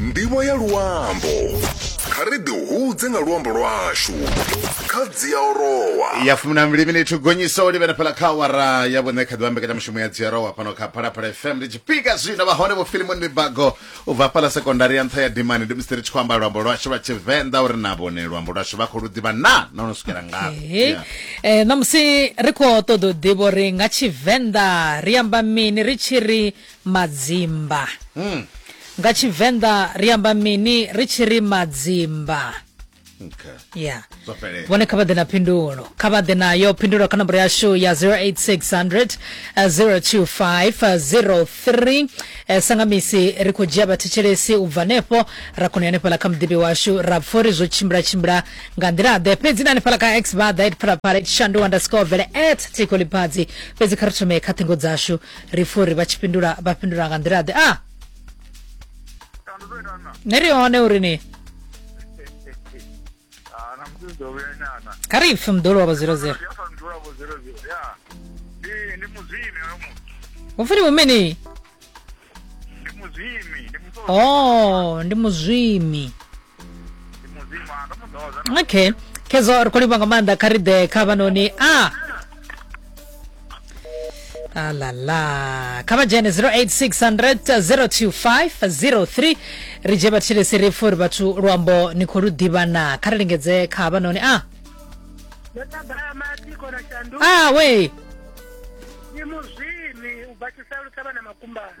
ndivho ya luambo kha ri ḓi hudze nga luambo lwashu kha dziaorowa ya fumi na mbili minithu gonyiso o livhena fhala kha awara ya vhuṋe kha ḓivha mbekanyamushumo ya dziarowa fhano kha phalaphala fm ndi tshifhinga zwino vha hone vho filimoni mibago u bva fhala sekondari ya nṱha ya dimani ndi musi ri tshi khou amba luambo lwashu lwa tshivenḓa uri na vhone luambo lwashu vha khou lu ḓivha na na ono swikela ngafhi Hey. Yeah. Eh, ṋamusi ri khou ṱoḓa u ḓivha uri nga tshivenḓa ri amba mini ri tshi ri madzimba. Nga Tshivenḓa ri amba mini ri tshi ri madzimba? Okay. Yeah. Zwo fhelela. vhone kha vha ḓe na phindulo kha vha ḓe nayo phindulo kha nomboro yashu ya 08600 eh, 02503 Eh, sanga misi ri khou dzhia vhathetshelesi u bva hanefho ra kona u ya hanefhaḽa kha muḓivhi washu ra pfa uri zwo tshimbila tshimbila nga nḓila ḓe fhedzi na hanefhaḽa kha x vha ḓa at phalaphala shandu underscore vele at tikoliphazi fhedzi kha ri thome kha ṱhingo dzashu ri pfha uri vha tshi fhindula vha fhindula nga nḓila ḓe a ah! ne ri hone uri ni kha ri pfhe muḓolo wa vho zero zero upfi ndi mumini o oh, ndi muzwimi okay khezwo ri khou livha nga maanḓa kha ri ḓe kha vhanoni a ah. alala kha vha dzhene 0860025023 ri dzhie vhathilesi ri pfha uri vhathu luambo ni khou lu ḓivha na kha ri lingedze kha havhanoni a a we ndi muzwimi u bva tshisalu thavha na makumbana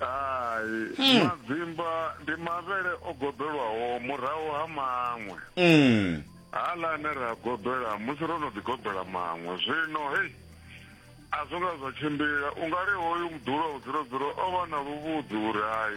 hai hmm. madzimba ndi mavhele o gobelwaho murahu ha maṅwe hmm. hala ane ra gobela musi ro no ḓigobela maṅwe zwino hei a zwo nga zwa tshimbila u nga ri hoyu muḓulo vhudzulodzulo o vha na luvhudzi uri hai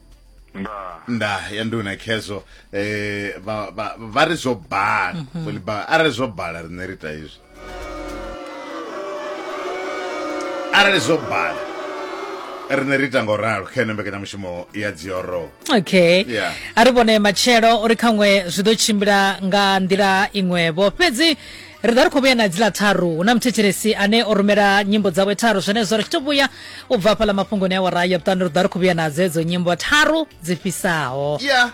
nda nda ya nduna khezwo eh vha vha vha ri zwo bala mhm. fuli ba a ri zwo bala rine ri ta izwo a ri zwo bala rine ri ita ngo ralo kha ene mbekanyamushumo ya dzioro okay yeah. a ri vhone matshelo uri khaṅwe zwi ḓo tshimbila nga nḓila iṅwevho fhedzi Ri ḓa ri khou vhuya na dziḽa tharu. Hu na muthetshelesi ane o rumela nyimbo dzawe tharu zwenezwo ri tshi tou vhuya u bva hafhaḽa mafhungoni awara ya vhuṱanu ri ḓa ri khou vhuya na dzedzo nyimbo tharu dzi fhisaho. Yeah.